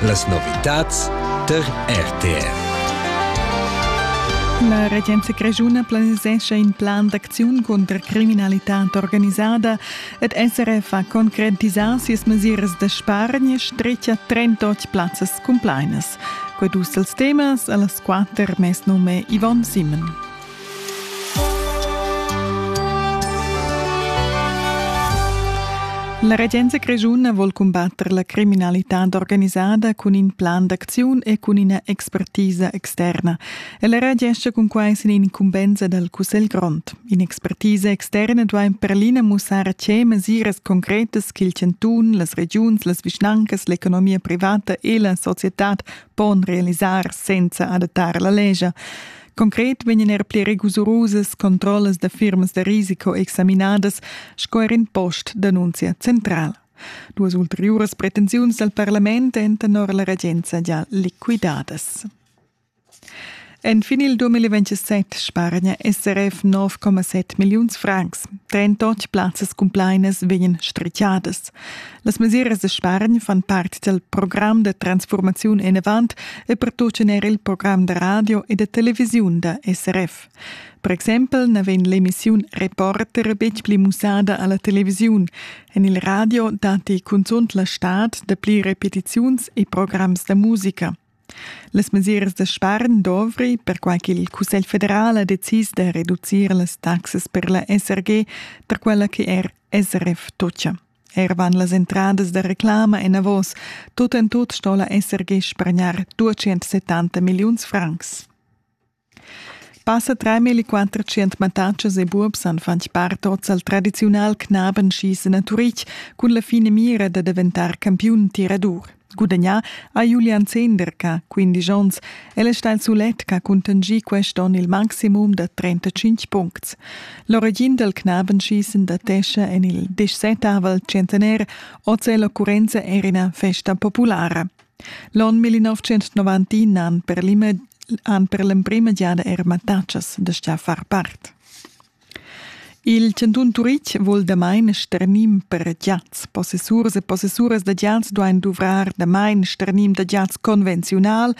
Las novitads tar RTR. La regenza grischuna planisescha in plan d'acziun cunter criminalitad organisada ed SRF ha concretisà sias mesiras da spargn e stretga 38 plazzas cumplainas. Qued uss els temas a las quatter mes nume Yvonne Simon. La regenza grischuna vol cumbatter la criminalitad organisada cun in plan d'acziun e cun ina expertisa externa. Ella reagescha cun quai sin incumbensa dal Cussegl grond. In'expertisa externa duai per l'ina mussar a tge mesiras concretas ch'il chantun, las regiuns, las vischnancas, l'economia privata e la societad pon realisar senza adattar la lescha. Concret vegnan er pli rigurusas controllas da firmas da risiko examinadas sco er in post d'annunzia centrala. Duas ulteriuras pretensiuns dal parlament èn tenor la regenza già liquidadas. Enfin il 2027 spargna SRF 9,7 milliuns francs. 38 plazzas cumplainas vegnan strichadas. Las mesiras da spargn fan part dal program da transfurmaziun enavant e pertutgan er il program da radio e da televisiun da SRF. Per exempel na vegn l'emissiun Reporter betg pli mussada a la televisiun. En il radio datti cunzunt la stad da pli repetiziuns e programs da musica. Las mesiras da spargn dovri, perquai ch'il Cussegl federal ha decis da reducir las taxas per la SRG per quella che er SRF tutgia. Er van las entradas da reclama enavos. Tut en tut sto la SRG spargnar 270 milliuns francs. Passa treimilli quattrocent mattatschas e buobs han fatg part oz al tradiziunal Knaben schiessen a Turitg cun la finamira da daventar campiun tiradur. Gudagnà ha Julian Zehnder che ha 15 onns. El è stà il sulet che ha cuntanschì quest onn il maximum da 35 puncts. L'origin dal Knabenschießen datescha en il dixsettavel centenair. Oz è l'occurrenza er ina festa populara. L'onn 1991 han per l'emprima han per l'emprima giada er mattatschas da sta far part. Il Cantun Turitg vul damain sternim per giats. Possessurs e possessuras da giats duain duvrar damain sternim da giats convenziunal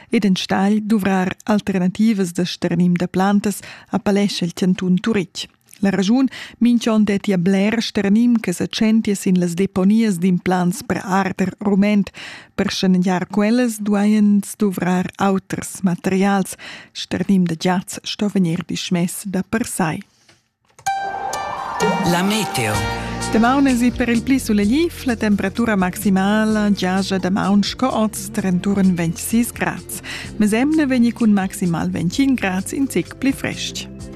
ed enstagl duvrar alternativas da sternim da plantas, appellescha il Cantun Turitg. La raschun minch'on dettia bler sternim che sa tschentia sin las deponias d'implants per arder rument. Per schanegiar quellas duajan duvrar auters materials. Sternim da giats sto vegnir dismess da per sai. La meteo. Damaun esi per il pli sulegliv, la temperatura maximala giaja damaun sco oz trenturen 26 grads. Mesemne vegni cun maximal 25 grads in zic pli frestg.